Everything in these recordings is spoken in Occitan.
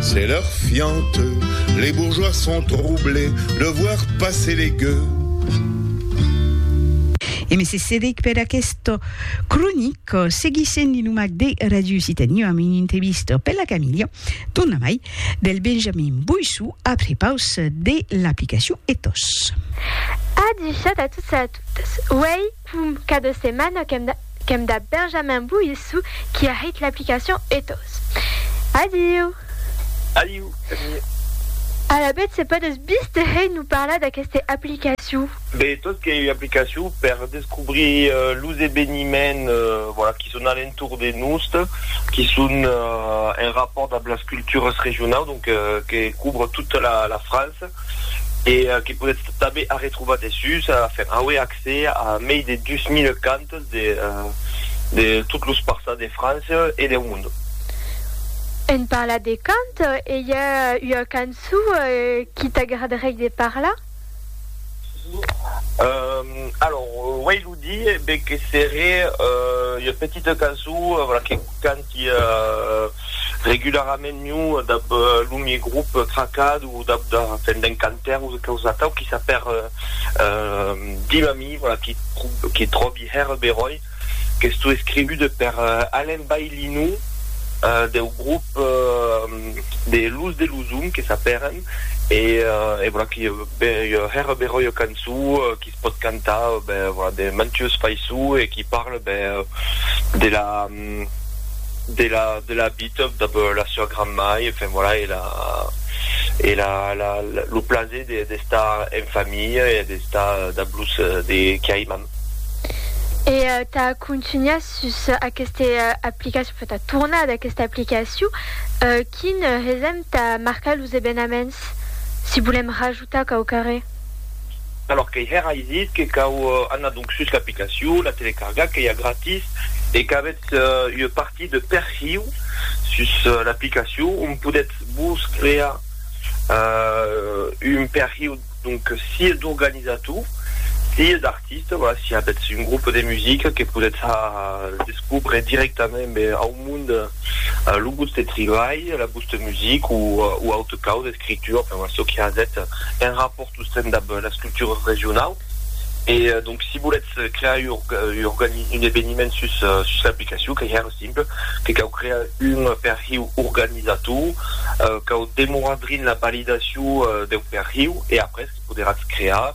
C'est l'heure fiante, les bourgeois sont troublés de voir passer les gueux. E mèsi Cedric per aquest cronic. Seguissent li nomac de Radio Occitanie amb un entrevista per la Camilha Donnamai del Benjamin Boissou après paus de l'aplicacion Ethos. Adusat a tots e a totas. Uèi, Pum, qu'a de setmana qu'èm dab Benjamin Boissou qui a hèit l'aplicacion Ethos. Adiu! Adiu, Camille. Alavetz se podes bis te hèit nous parlar d'aqueste aplicacion? Be, Ethos qu'ei ua aplicacion per descobrir los eveniments voilà qui son a l'entorn de nost, qui son en rapport dab las cultures regionaus, donc que couvre toute la France e que podetz tanben arretrobar dessús, enfin, auer accès. accès a mei de 2000 cantes de de tot los parças de França e deu mond. En parlat de cant, i a ua cançó qui t'agradaréi de parlar? Alors, uèi lo dire, be que seré ua petita cançó, voilà, que canta. Qu'ia regularament miu dab lo mie grup tracat o dab da fèn d'un cantaire o causa atau qui s'a per dim a mi, voilà, qui qui tròbi hèr beròi qu'estó escrivude per Alain Baillinou deu grup de Luz de Luzum que s'a pèren e e voilà qui ua hèr beròi ua cançó qui se pòt cantar, ben, voilà, de mantues faiçons e qui parle, ben, de la. de la de la vita dab la sua granmai enfin voilà e la e la la lo plaser de d'estar en familha e d'estar dab los de qui aiman. E tà contunhar sus aqueste aplicacion, enfin tà tornar d'aquesta aplicacion, quin hesèm tà marcar los evenaments si volèm rajustar? Tà cau carrer. Alòr qu'ei hèr ai dit que cau anar donc sus l'aplicacion, la telecargar qu'ei a gratis e qu'avètz ua partit de perhiu sus l'aplicacion ont podètz vos crear un perhiu donc sia d'organizator sia d'artista, voilà, si avètz un groupe de musica que podètz descobre directament ben au monde lo vòste tribalh, la vòsta musica o auta causa. creature, enfin voilà, çò que hazèt un rapòrt sostren dab las cultures regionaus. E donc si volètz crear un eveniment sus l'aplicacion, qu'ei hèr simple, que cau crear un perhiu organizator, cau demorar drin la validacion deu perhiu e après que poderatz crear.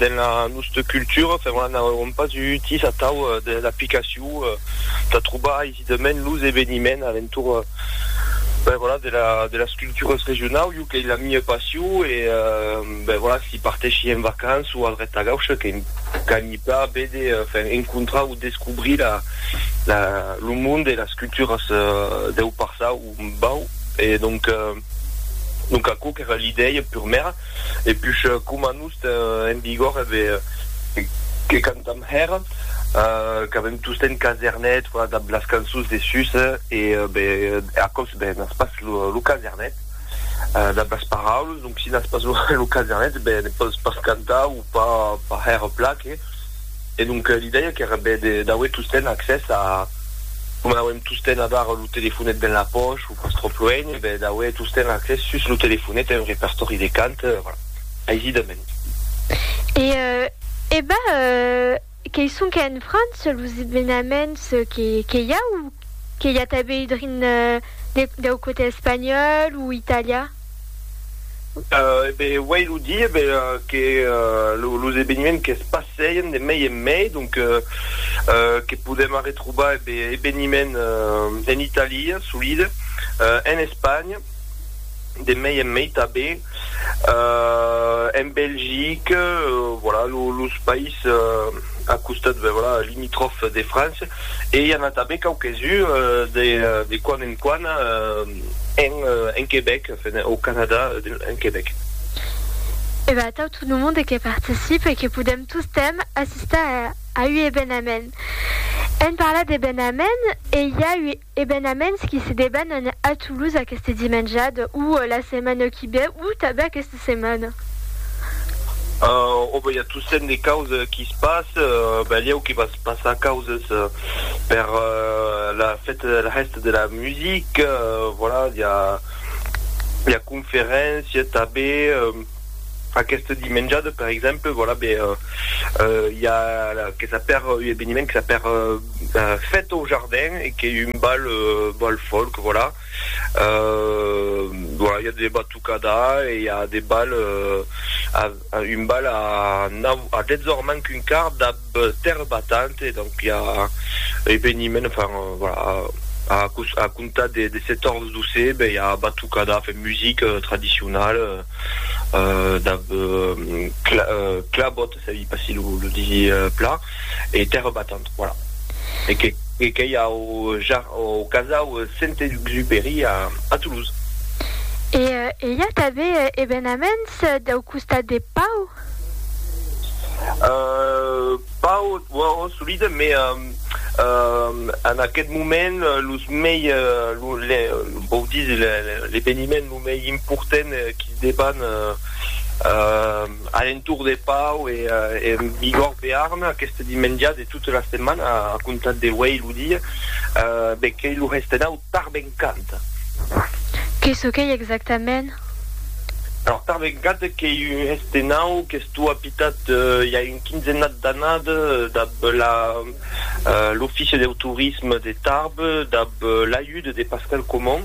dens la nosta cultura per una nau èron pas utis atau de l'aplicacion tà trobar aisidament los eveniments alentor ben voilà de la de las culturas regionau jo qu'ei la mia passion e ben voilà si parteshi en vacança o al Retagauche que qu'anhi pla vede enfin encontrar o descobrir la la lo monde e las culturas deu passau Bau, e donc, donc aquò qu'èra l'idèia purmèra, e push coma nos ten en vigor eve que cantam hèra, qu'avem tostemp casernet, voilà dab las cançons de sus, e be aquò be n'as pas lo casernet dab las paraules, donc si n'as pas lo casernet, be ne pòs pas cantar o pas hèra plan que. e donc li dèia qu'èra bè d'auer tosten accès a, coma n'auem tosten abar lo telefonet ben la pòch o pas tròp luenh, e bè d'auer tosten accès sus lo telefonet a un repertòri de cant, voilà, aisidament. E ebà, qu'ei sonque en França los evenaments que i a o que i a tanben drin dau cotè espanhòl o italià? E ben, uèi lo di, e ben, que los eveniments que's passèien de mei en mei, donc, que podèm arretrobar, e ben, eveniments en Italia, solide, en Espanha, de mei en mei tanben, en Belgique, voilà, los país a costat, ben, voilà, limitròf de França, e i a-n-a tanben quauques uns, de quand en quand, En Quebec, au Canada, en Quebec. E ben atau tot lo monde que participe e que podèm tostemps assistar a ui ebenament. En parlar d'ebenament, e i a ui ebenaments qui se debanan a Toulouse aqueste dimenjada, ou la setmana qui ve, ou tanben aqueste. setmana. Òbe, i a tossent de causes qui se passe, balhèu que vas passar causes per la fête de la hèsta de la musique, voilà, i a i a conferéncia tabe, aqueste dimenjada per exemple, voilà, be i a que s'a per un eveniment que s'a per fête au jardin e qu'ei un bal bal folk, voilà, voilà, i a de batuts. Cada an i a de bal, un bal a nau, a dètz ors manc un quart dab Terre Battante, donc i a eveniment, enfin voilà, a comptar de set ors dousè ben i a batucada, enfin musique tradicionale dab Clabot. Se i passi lo disi pla e tèrra batant, voilà. E que qu'ei au jar, au casau Saint-Exupéry a Toulouse. E i a tave evenaments dau costat de Pau? Pau, ò, solide, me en aquest moment los mei, vòu disi l'eveniment lo mei important qu'i deban A l'entorn de Pau e Bigòrd Bearn aqueste dimenja de tota la setmana a comptar de uèi lo dia, be qu'ei lo restenau Tarbencant. Que çò qu'ei exactament? Alors Tarbencant qu'ei un restenau qu'estó apitat i a un quinzennat d'annadas dab la. L'Ofici deu Torisme de Tarbes, dab l'ajut de Pascal Comon,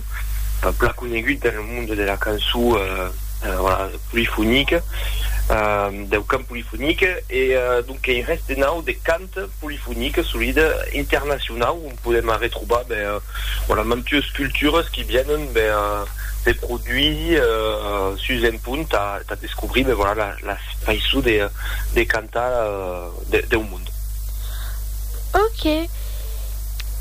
plan conegut dans le monde de la cançon polifonique, deu cant polifonique, e donc qu'ei res de nau de cant polifonique, solid, internacionau, on podem arretrobar mantues cultures qui vienen se produisir sus un punt tà descobrir la faiçon de cantar. de, deu monde. Ok.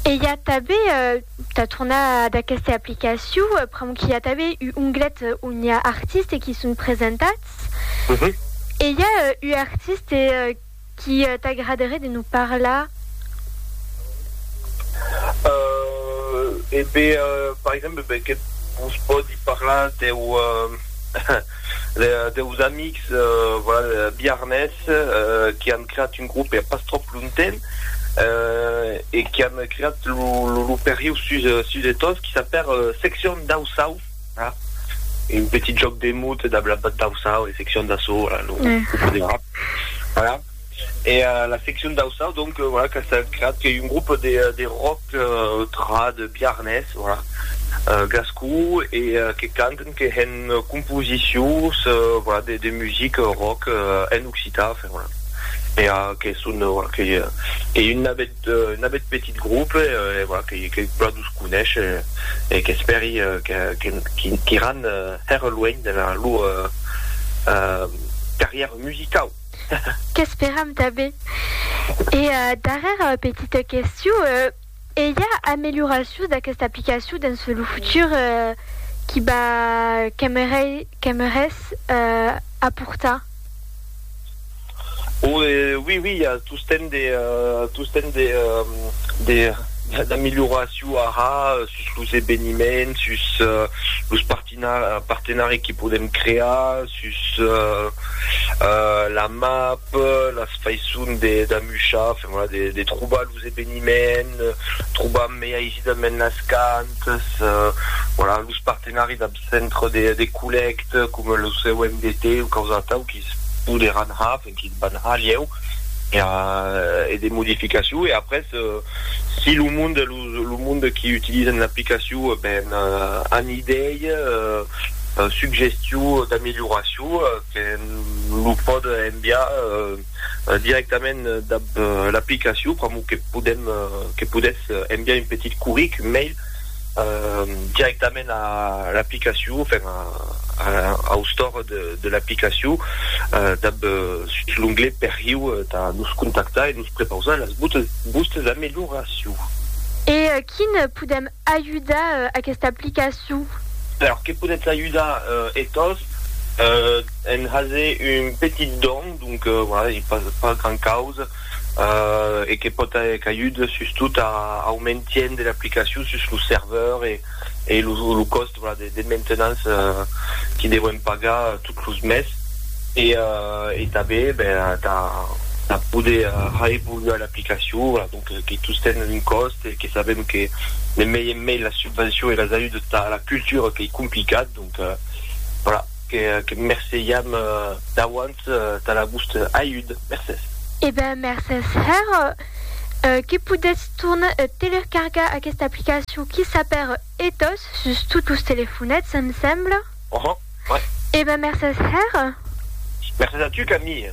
E i a tabé, uh, ta tornar ad aquesta aplicacion, uh, pr'amor qu'i a tabé u onglet on i a artiste qui son presentats. Mm -hmm. E i a uh, u artiste uh, qui uh, t'agradaré de nos parlar? Uh, e be, uh, par exemple, be, que vos pòdi parlar deu... Uh, Deus amics biarnés que an creat un grop hè pas tròp longtemps e que an creat lo perriu sus de tot qui s'apèr Seccion Dausau, un petit jòc de mots dab la Dausau e Seccion Dassau, lo podem. E la seccion d'Aussau, donc, voilà, qu'a estat creat, qu'ei un grop de de rock trad biarnés, voilà, gascon, e que canten, que hèn composicions, voilà, de de music rock en occitan, enfin, voilà. E que son, voilà, qu'ei qu'ei un nabet un nabet petit grop, e voilà, que que plan los conesh, e qu'espèri que que qu'iran hèr luenh dera lor carrièra musicau. Qu'esperam tanben. E darrèra petita question, e i a amelioracions d'aquesta aplicacion dens lo futur qui va qu'aimerais aportar? O oui oui, i a tostemp de tostemp de de d'amelioracion ara sus los eveniments, sus los parti. Quina partenari que podem crear sus la map, las faisson d'amuchar, enfin voilà, de trobar los eveniments, trobar mei aisidament las cantes, voilà, los partenari dab centre de collècte coma lo COMDT o causa atau que's poderàn har. Quin ban halieu e de modificacion e après si lo monde lo monde qui utilisen l'aplicacion ben an idei suggestion d'amélioration que lo pòd enviar directament dab l'aplicacion pr'amor que podem que podètz enviar un petit curric mail directament a l'aplicacion, enfin au store de l'aplicacion, dab l'onglet perriu tà nos contactar e nos prepausar las vòstes amelioracions. E quin podèm ajudar aquesta aplicacion? Alors, que podètz ajudar e tos en haser un petit don, donc voilà, pas gran causa, e que pòt aer caigut sustot au mentien de l'aplicacion sus lo serveur e lo còst de maintenance que devèm pagar tot los mes e tanben tà poder aevoluar l'aplicacion que tous ten un còst e que sabèm que de mei en mei las subvencions e las ajudas tà la cultura qu'ei complicat, donc voilà que merceiam d'auant. tot tà la vòste ajud. Mercés. E ben, mercés hèr que podètz tornar a telercargar aquesta aplicacion qui s'apèr Ethos sus tot los telefonets, em sembla. Uhum, ouais. E ben, mercés hèr. Mercés a tu, Camille.